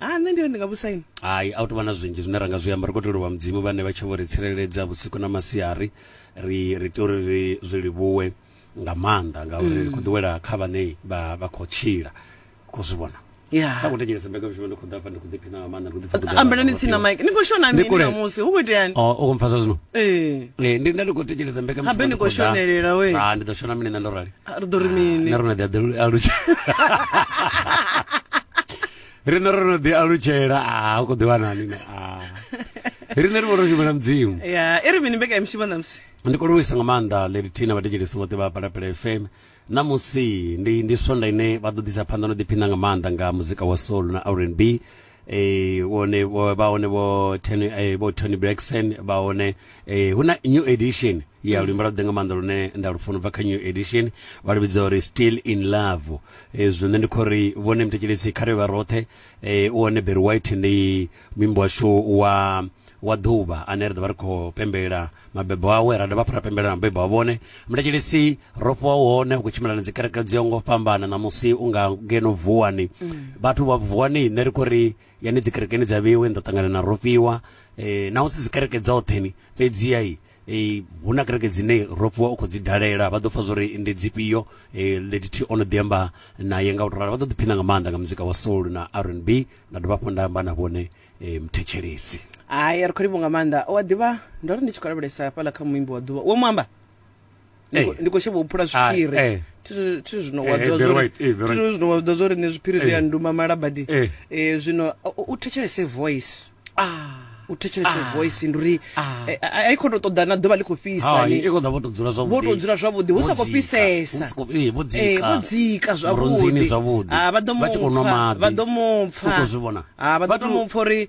ha nṋe ndiri ndi nga vhusaini hai a u tovha na zwinzhi zwine ra nga zwi amba ri khou tea u livhuwa mudzimu vhane vha tshi vho ri tsireledza vhusiku na masiari ri ri tea uri ri zwi livhuwe nga maanḓa ngauri ri khou mm. ḓiwela kha vhane vha vha khou tshila khou zwi vhona kha khou thetshelesa mbekanyamushumo ndi khou ḓafha ndi khou ḓiphina nga maanḓa ndi khou ḓipfa ambelani tsina mike ni khou shona mini namusi hu khou iteani u oh, khou mpfasa zwino ee eh, ndi nda ndi khou thetshelesa mbekanyamushumo ni khou shonelela we ha ah, ndi ḓo shona mini nṋe ndo rali ah, ri ḓo ri mini na rona ḓi a ḓi a lutshela rine ro no ḓi alutshela a hu khou ḓivha nani ne a rine ri vho ro shumela mudzimu ya i ri mini mbekanyamushumo ṋamusi ndi khou livhuisa nga maanḓa lady tina vhathetshelesi vhoṱhe vha palapela fm namusi ndi ndi swonda ine vha ḓo ḓisa phanḓa no ḓiphina nga maanḓa nga muzika wa soul na rnb eh wone vho- vha hone vho Tony eh, vho Tony Braxton vha hone eh hu na new edition ya luimbo lwa ḓe nga maanḓa lune nda lufuna ubva kha new edition vha luvhidza uri still in love E, zwino nṋe ndi khou ri vhone muthetshelesi kha ri vha roṱhe e, u hone Barry White ndi muimbi washu wa wa ḓuvha ane ri ḓo vha ri khou pembelela mabebo awe ra dovha hafhu ra pembelela mabebo a vhone muthetshelesi ro fhiwa u hone u khou tshimbila na dzi kereke dzi yongo fhambana ṋamusi u nga ngeno vuwani vhathu vha vuwani nṋe ri khou ri yani dzi kerekeni dza vheiwe ni ḓo ṱangana na rofhiwa e, naho si dzi kereke dzoṱhe ni fhedziha i hu na kereke dzine ro fhiwa u khou dzi dalela vha ḓo pfha zwori ndi dzifhio lady t o no ḓi amba naye nga u to ralo vha ḓo ḓiphina nga maanḓa nga muzika wa soul na r n b nda dovha hafhu nda amba na vhone muthetshelesi hai ri khou livho nga maanḓa owa ḓivha ndo ri ndi tshi khou lavhelesa hafhaḽa kha muimbi wa ḓuvha wo mu amba Hey. ndi khou shavha u phula zwiphiri ah, thi zwino wa ḓivha zwori zwino wa ḓivha zwori ni zwiphiri zwi a nduma malabadi eh, zwino u thetshelese voice ah u thetshelese ah. voice ndi uri ah. eh, eh, a i khou tou ṱoḓa na ḓuvha ḽi khou fhisa ni vho tou dzula zwavhuḓi hu sa khou fhisesa eh, vho dzika zwavhuḓi ah, vha ḓo mupfa vha ḓo mupfa vha ḓo mupfa uri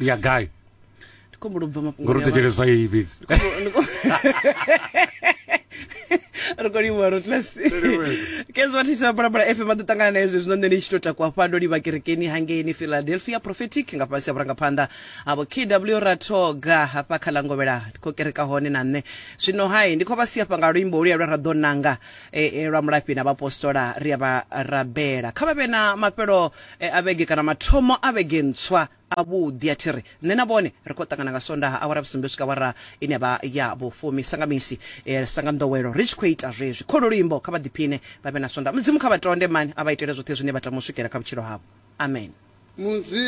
ya gai ndi khombo lobva mafhungo ngori tekelesa iyi fhedzi ri khou livhuwa rotlasi kezwa thisa balabala fm a ḓo ṱangana na hezwi zwino nṋe ndi tshi tou takuwa fha ndo livha kerekeni hangeini philadelphia prophetic nga fhasi ha vhurangaphanḓa avo kw rathoga hafha kha langovhela ndi khou kereka hone na nṋe zwino hai ndi khou vha siafha nga luimbo oluya lwa ra ḓo nanga e, e, lwa mulafhi na vhaapostola ri a vha rabela kha vha vhe na mafhelo E a vhege kana mathomo a vhege ntswa avhuḓi a thi ri nṋe na vhone ri khou ṱangana nga Sondaha awara ya vhusumbe u swika awara ine vha ya vhufumi sa nga misi sa nga nḓowelo ri tshi khou ita zwezwi kholo luimbo kha vha ḓiphine vha vhe na Sondaha Mudzimu kha vha tonde mani a vha itele zwoṱhe zwine vha tama u swikela kha vhutshilo havho Amen.